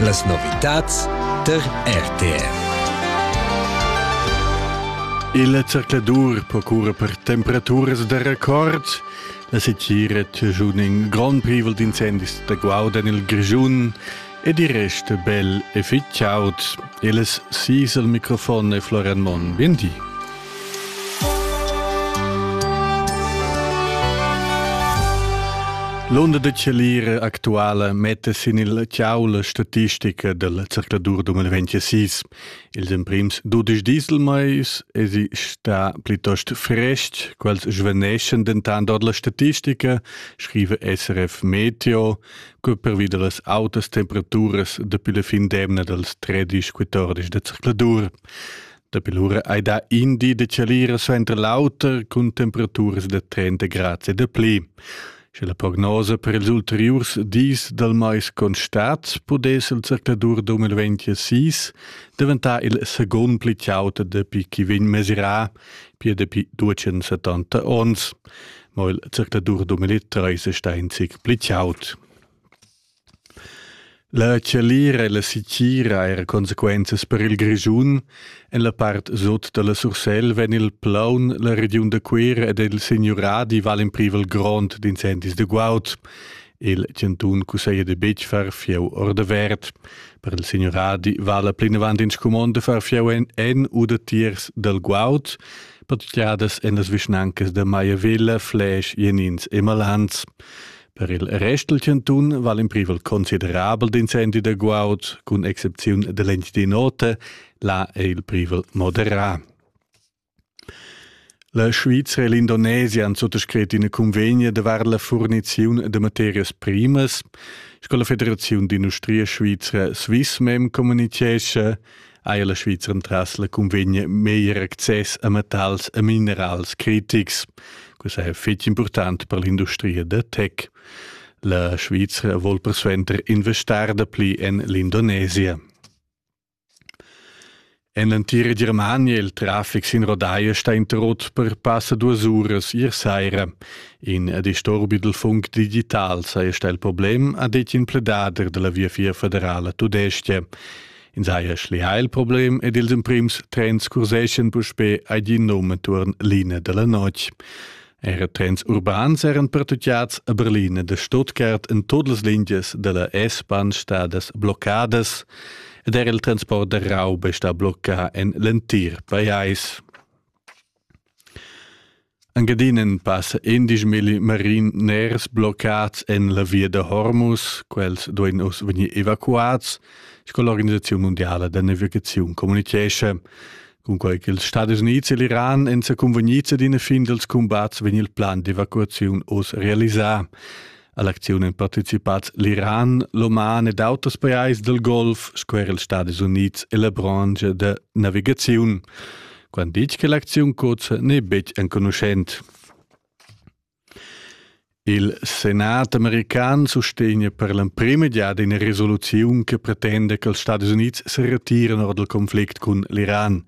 Las novitads tar RTR. Il zercladur procura per temperaturas da record. La setgira giun in grond privel d'incendis da guaud en il Grischun ed il rest bel e fitg chaud. Il sis al microfon è Florian Monn. Bien di. L'onda da Chalira actuala metta sin il ciau la statistica del circuladur 2026. Ils emprims dudisch dieselmais esi sta plitost frest, quels svaneschan dentant ord la statistica, scrive SRF Meteo, che pervi da las autas temperaturas dapi la fin d'emna dals 13-14 da circuladur. Dapi lura hai dà in di da chalira suenter l'auter cun temperaturas da 30 grads e da pli. Sche la prognosa per ils ulteriurs dis dal mais constat, pudess il zercladur da 2026 daventar il secund pli chaut dapi chi vegn mesirà pia dapi 270 ons. Ma il zercladur 2030 è stà in zic pli chaut. La tschalira e la sitgira eir consequenzas per il Grischun. En la part sot da la Sursel vegn il plaun, la regiun da Cuera ed il signuradi valen privel grond d'incendis da guaud. Il chantun cusseglia de betg far fieu ordavert. Per il signuradi vala plinavant in scumond de far fieu en, en u da tiers dal guaud. Patgiadas en las vischnancas da Maiavilla, Fläsch, Jenins e Malans. Per il rest dal chantun val in privel considerabel d'incendi da guaud, cun excepziun da l'Encidinote, là è il privel moderà. La Svizra e l'Indonesia han suttascrit in convegno davart la furniziun de materias primas. Sco la Federaziun d'industria svizra Swissmem communitgescha, eir la Svizra entras la cunvegna meglier access a metals e minerals critics. Questa è fitg important per l'industria da tech. La Svizra vuol persuenter investar dapli en l'Indonesia. En l'entira Germania il traffic sin rodaia sta interrotto per passa duas uras ier saira. In disturbi del funk digital saja il problem, ha detto in pledader della Via Fia Federale Tudestia. Ins haja schlià il problem ed ils emprims trens curseschan puspè ad in num enturn l'ina da la notg. Era trens urbans eran pertutgads a Berlin e Stuttgart en tut las lingias da la S-Bahn stadas bloccadas ed era il transport da rauba sta bloccà en l'entir pajais. Engadinen passa endisch milli marin ners bloccats en la via da Hormuz. Quels duein uss vegnir evacuats, sco l'organisaziun mundiala da navigaziun communichescha. Cunquei ch'ils Stadis Unids e l'Iran èn sa cunvegnids ad ina fin dals cumbats vegn il plan d'evacuaziun oz realisà. A l'acziun èn participads l'Iran, l'Oman ed auters pajais dal Golf sco er ils Stadis Unids e la brancha da navigaziun. Quant ditg che l'acziun cozza n'è betg enconuschent. Il Senat american sustegna per l'emprima giada ina resoluziun che pretenda che els Stadis Unids se retiren ord il conflict cun l'Iran.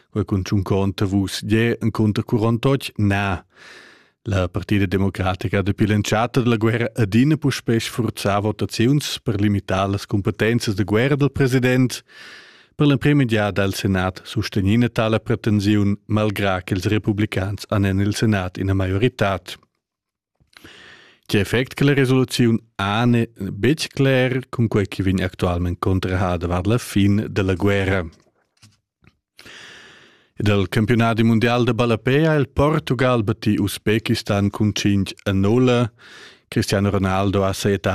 Quel cun tschun conta vus je en conter 48 na. La partida democratica dapi l'entschatta dalla guerra adina puspè sfurzà votaziuns per limitar las cumpetenzas da guerra dal president. Per l'emprima giada al Senat sustegnina tala pretensiun malgrà ch'ils republicans han en il Senat ina maioritad. Tge effect che la resoluziun ha n'è betg cler, cunquai che vegn actualmente contrahada var la fin della guerra. Dal campiunadi mundial da ballapè ha il Portugal battì Usbekistan cun cinc a nulla. Cristiano Ronaldo ha sajettà